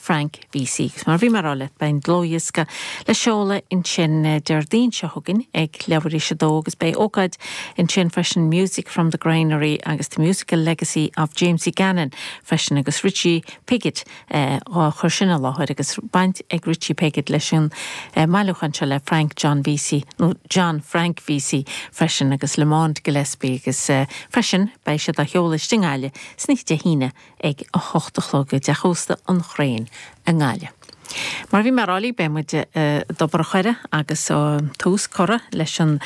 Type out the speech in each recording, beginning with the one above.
Frank Vesey. Agus mar a bhí mé ag rá leat, beidh an dlúthdhiosca le seoladh ansin Déardaoin seo chugainn ag leathuair tar éis 2 agus beidh ócáid ansin freisin Music from the Granary agus The Musical Legacy of Jamesy Gannon freisin agus Richie Piggott á chur sin i láthair agus baint ag Richie Piggott leis an mbailiúchán seo le Frank John Vesey nó John Frank Vesey freisin agus Lamond Gillespie agus freisin beidh siad á sheoladh istigh i nGaillimh san oíche Dé hAoine ag a hocht a chlog i dteach ósta An Chrane i nGaillimh. Mar a bhí mé ag rá libh, beidh muid i dTobar an Choire agus tá tús curtha leis an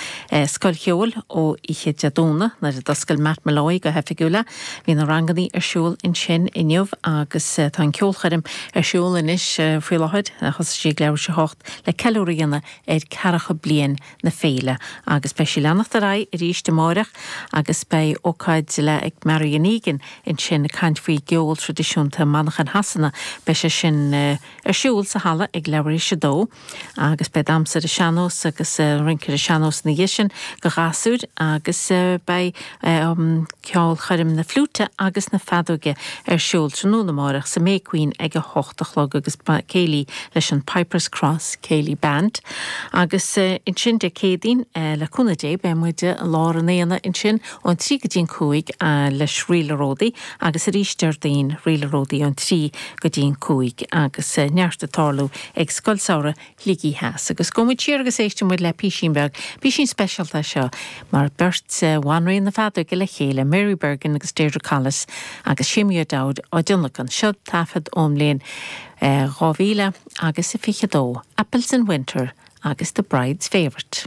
Scoil Cheoil ó oíche Dé Domhnaigh nuair a d'oscail Matt Molloy go hoifigiúil é. Bhí na rangannaí ar siúl ansin inniu agus tá an ceolchoirm ar siúl anois faoi láthair. Thosaigh sí ag leathuair tar éis a hocht le ceiliúradh a dhéanamh ar ceathracha bliain na féile agus beidh sí ag leanacht ar aghaidh arís amáireach agus beidh ócáid, léacht ag Marian Egan ansin ag caint faoin gceol traidisiúnta i Manchain Shasana. Beidh sé sin ar siúl sa halla ag leathuair tar éis a dó agus beidh damhsa ar an sean-nós agus rince ar an sean-nós ina dhiaidh sin do ghasúir agus beidh Ceolchoirm na fliúite agus na feadóige ar siúl tráthnóna amárach sa May Queen ag a hocht a chlog agus céilí leis an Pipers Cross Céilí Band. Agus ansin Dé Céadaoin le cúnamh Dé beidh muid i lár an aonaigh ansin ón trí go dtí an cúig leis Rí le Ródaí agus arís Déardaoin Rí le Ródaí ón trí go dtí an cúig agus neart ag tarlú ag Scoil Samhraidh Shligigh Theas agus gabhfaidh muid siar agus éistfidh muid le písín beag. Písín speisialta é seo mar beirt bhanríon na feadóige le chéile, Mary Bergin agus Deirdre Collis agus Séamie O'Dowd á dtionlacan anseo, taifead ón mbliain 2022, Apples in Winter agus The Bride's Favourite.